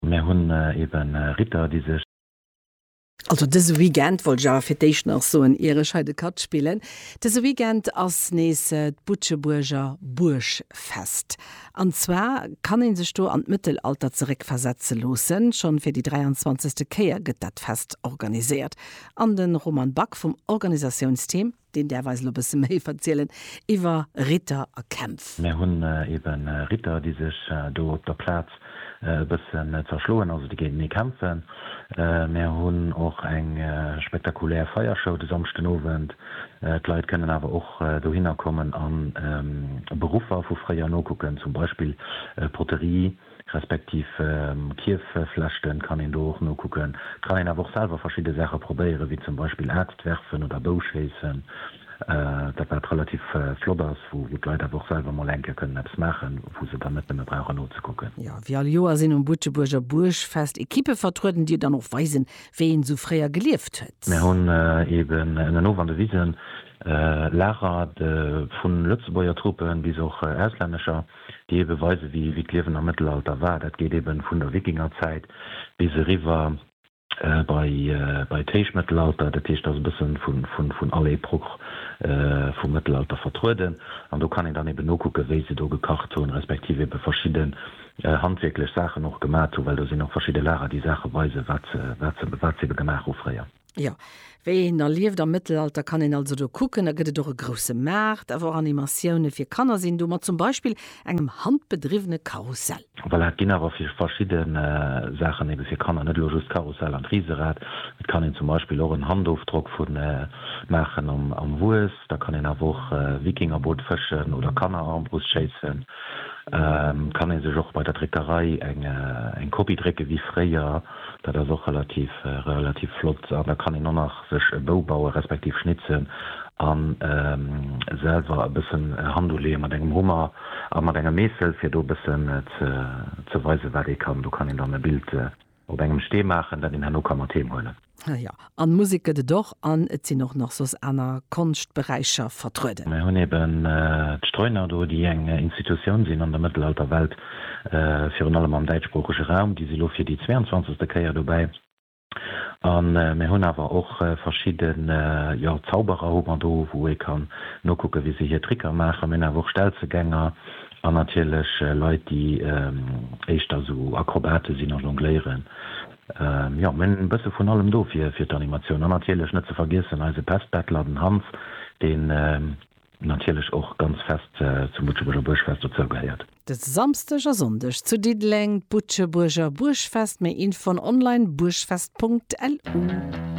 Mär hunn eben Ritter, déi sech. Also dëse Weekend, wollt ech awer fir d'éischt nach soen, ier ech hei de Katt spillen, dëse Weekend ass nees d'Butschebuerger Buergfest. An zwar kann ee sech do an d'Mëttelalter zeréckversetze loossen. Schonn fir déi 23. Kéier gëtt dat Fest organiséiert an de Roman Back vum Organisatiounsteam. Deen däerf eis elo bësse méi verzielen iwwer Ritter a Kämpf. Mär hunn eben Ritter, déi sech do op der Plaz e bëssen zerschloen, also déi géintenee kämpfen. Mär hunn och eng spektakulär Feiershow de Samschdenowend. D'Leit kënnen awer och dohinner kommen a Beruffer vu fréier nokucken, zum Beispill Poterie. respektiv Kierfeflechten, kann een do och nokucken. Et kann een awer och selwer verschidde Saache probéieren, wéi zum Beispill Aaxt werfen oder Bou schéissen, dat wat relativ flott ass, wou d'Leit awer och selwer mol eng Kéier kënnen eppes maachen, wou se dann net nëmme brauchen nozekucken. Jo, wéi all Joer sinn um Butschebuerger Buergfest Ekippe vertrueden, déi dann och weisen, wéi een esou fréier gelieft huet. Mir hunn eben ënnenof an de Wisen Lager vun Lëtzebuerger Troupen bis och auslännescher. déi ebe weise wéi wéi d'Liewen am Mëttelalter war. Dat geet ebe vun der Wikingerzäit bis eriwwer bei bei d'Héichmëttelalter. Dat heescht, et ass e bësse vu vu vun all Epoch vum Mëttelalter vertrueden an do kann een dann ebe nokucke wéi se do gekacht hunn, respektiv ebe verschidde handwierklech Saachen och gemat hunn, well do sinn och verschidde Lager déi Saache weise wat se wat se wat se ebe gemaach hu fréier. Jo, wéi een da lieft am Mëttelalter kann een also do kucken. Da gëtt et och e grousse Maart, awer och Animatioune fir Kanner sinn do, mat zum Beispill engem handbedriwwene Karussell. Voilà, et ginn awer fir verschidde Saachen ebe fir Kanner net elo just d'Karussell an d'Riserad. Et kann een zum Beispill och en Handofdrock vu maachen am Wues. Da kann een awer och Wikingerboot fëschen oder Kannerarmbrust schéissen. Kann ee sech och bei der Dréckerei eng Kopie drécke wéi fréier. Dat ass och relativ relativ flott an da kann een och nach sech e Bou bauen, respektiv schnitzen an selwer e bëssen Hand uleeën mat engem Hummer a mat engem Meessel fir do e bëssen ze ze weisen wat ee kann. Do kann een dann e Bild op engem Stee maachen dat een herno ka mat heem huelen. An Musek gëtt et och, an et sinn och nach soss aner Konschtberäicher vertrueden. Mir hunn eben d'Streuner do, déi eng Institutioun sinn an der Mëttelalterwelt, virun allem am däitschsproochege Raum. Déi si lo fir déi zweeënzwanzegste Kéier dobäi. A mir hunn awer och verschidde, jo, Zauberer hu mer do, wou ee kann nokucke wéi se hir Tricker maachen. Mir hunn awer och Stelzegänger an natierlech Leit, déi éischter esou Akrobate sinn a jongléieren. Jo, mir hunn e bësse vun allem do fir d'Animatioun. An natierlech net ze vergiessen eise Pestbettler, den Hans, deen natierlech och ganz fest zum Butschebuerger Buergfest dozou gehéiert. De Samsdeg a Sonndeg zu Diddeleng d'Butschebuerger Buergfest, méi Infon online, buergfest.lu.